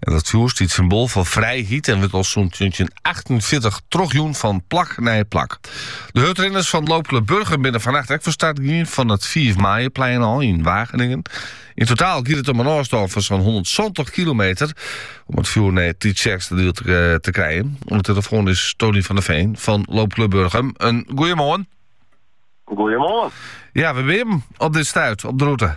En dat fjoer stiet symbool foar frijheid en wurdt al sûnt 1948 trochjûn fan plak nei plak. De hurdrinners fan Loopklub Burgum binne fannacht ek fan start gien fan it 5 maaie-plein al yn Wageningen. Yn totaal giet it om in ôfstân fan sa'n 170 kilometer om it fjoer nei Tytsjerksteradiel te krijen. Oan de telefoan is Tony van der Veen fan Loopklub Burgum. In goeiemoarn. Goeiemoarn. Ja, wêr binne jo op dit stuit, op de route.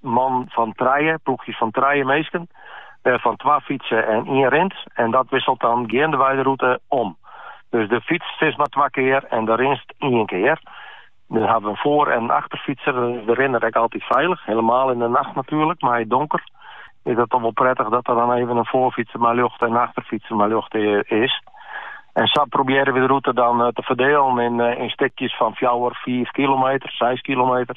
man fan trije, ploechjes fan trije minsken, wêrfan twa fytse en ien rint en dat wisselt dan geandewei de rûte om. Dus do fytst sis mar twa kear en do rinst ien kear. Dan hawwe we in foar en in achterfytser, dan is de rinner ek altyd feilich, hielemaal yn de nacht natuerlik mei it donker is dat toch wol prettich dat der dan even in foarfytser mei ljocht en in achterfytser mei ljocht is. En sa probearje we de rûte dan te ferdelen yn stikjes fan fjouwer, fiif kilometer, seis kilometer.